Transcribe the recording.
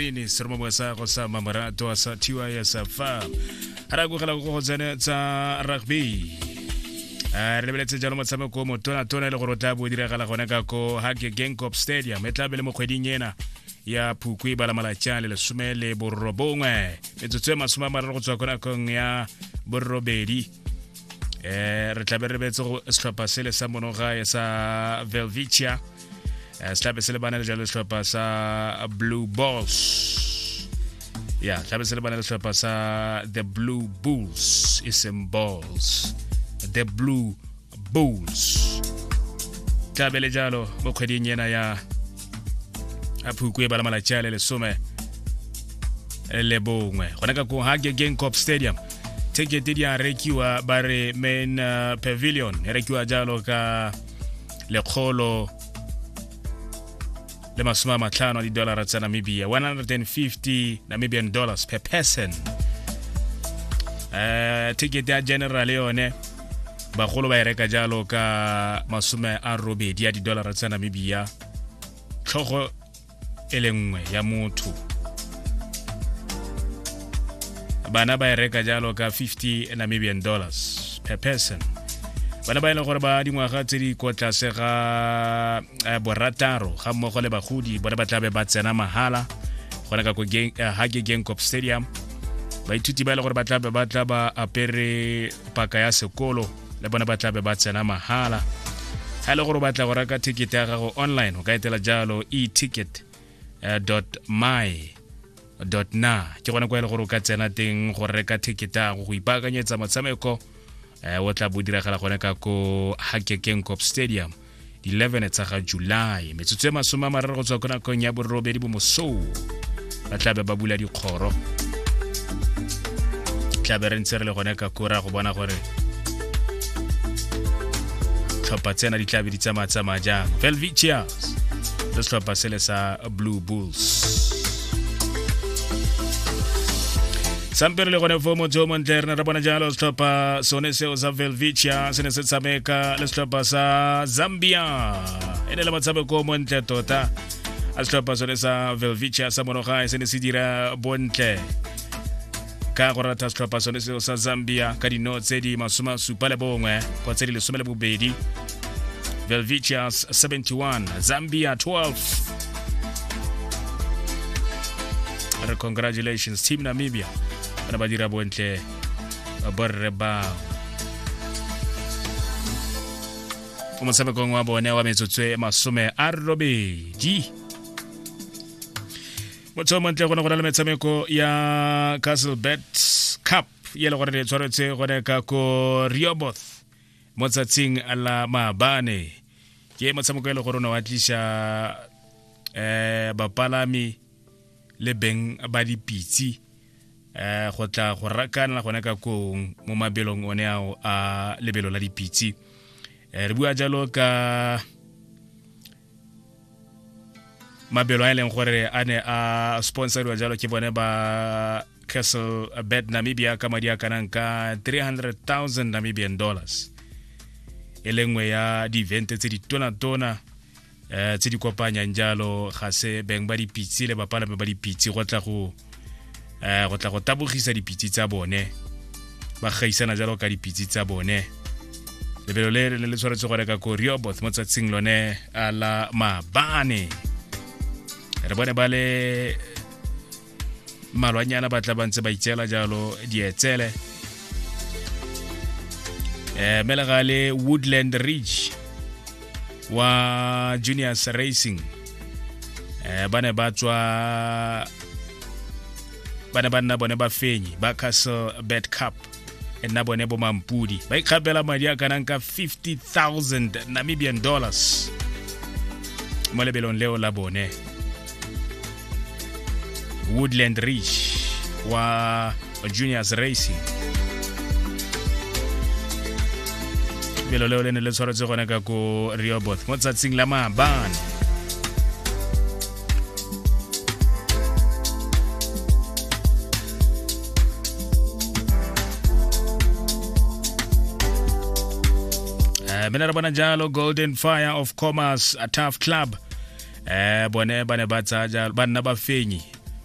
ini seromo bwa sa go sa mamorato a sa thiwa ya sa fa a ra kogela go go tsene tsa rugby a re lebeletse jalo motshameko o motonatona e le gore o tla bo o diragala gone ka ko hake gangcop stadium e tla be le mo kgweding ena ya phukwi e bala malatšang le lesome le borobongwe metsotso e masome a mararo go tswa ko nakong ya borobedi eh re tlabe re betse go setlhopha sele sa monogae sa velvicia eh, se tlabe se le bana le jalo setlhopha sa blue balls ya tlabe se le bana le setlhopha sa the blue bulls e seng balls the blue bulls tlabele jalo mo kgweding ena ya a phukwe e bala malatsi a le lesome le bongwe gone ka kong ga gegeng cop stadium tekete di a rekiwa ba re main uh, pavilion e rekiwa jalo ka lekgolo le masome a matlhano a didolara tsa namibia 150 namibian dollars per person um ticket ya general yone bagolo ba e reka jalo ka masome a robedi ya didolara tsa namibia tlhogo e le nngwe ya motho bana ba e reka jalo ka 50 namibian dollars per person bana ba e leng gore ba dingwaga tse di kwa tlase ga eh, borataro ga mmogo le bagodi bone ba tlabe ba tsena mahala gona ka eh, hage gangcop stadium baithuti ba e le gore ba tlabe ba tla ba apere paka ya sekolo le bone ba tlabe ba tsena mahala ga e le gore o batla go reka ticket ya gago online o ka etela jalo e-ticket eh, my dot na ke gone kwa e le gore o ka tsena teng go reka theketa go go ipaakanyetsa motshameko eh, o tla bo diragala gone ka ko hakekeng cop stadium 11 tsa ga july metsotso e masome a mararo go tswa ko nakong ya borobedi bomosou ba tlabe ba bula dikgoro tlabe re ntse re le gone ka kora go bona gore tlhopha tsena di tlabe di tsamaya tsamaya jang velvicias se setlhopha sele sa blue bulls sampere le gone fo motse o montle re ne re bona jalo setlhopha sone seo sa velvicia se ne se tshameka le setlhopha sa zambia e ne le motshameko o montle tota a setlhopha sone sa velvicia sa monogae se ne se dira bontle ka go rata setlhopha sone seo sa zambia ka dino tse di masoma supa le bongwe go tse di lesome le bobedi velvicius 71 zambia 12 re congratulations team namibia bana ba dira bontle borre bao mo motshamekong wa bone wa metsotso e masome a robedi motsheo montle gone go na le metshameko ya castle bet cup ye le gore le tshwaretse gone ka ko rioboth mo tsatsing la maabane ke motshameko e le gore o ne wa tlisa um bapalami le beng ba dipitse um go tla go rakanela gone ka kong mo mabelong one ao a lebelo la dipitse um re bua jalo ka mabelo a e leng gore a ne a sponsoriwa jalo ke bone ba castle bed namibia ka madi a kanang ka 300000 namibian dollars e le nngwe ya di-event tse di tona-tona um tse di kopanyang jalo ga se beng ba dipitse le bapalame ba dipitse go tla go um go tla go tabogisa dipitsi tsa bone ba gaisana jalo ka dipitsi tsa bone lebelo le le le tshwanetse go reka ko rioboth mo tsatsing lone a la mabane re bone ba le malwanyana ba tla ba ntse ba itseela jalo dietsele um melegale woodland ridge wa juniors racing eh ba ne ba tswa ba ne ba nna bone ba fenyi ba castle bed cup e nna bone bo mampudi ba ikgapela madi a kanang ka 50000 namibian dollars mo lebelong leo la bone Woodland Ridge wa Juniors Racing lefelo leo le ne le tshwaretse gone ka ko reoboth mo tsatsing la maabane eh mina re bona jalo golden fire of commerce a tough club eh bone ba ne ba tsaya jalo ba nna ba fenyi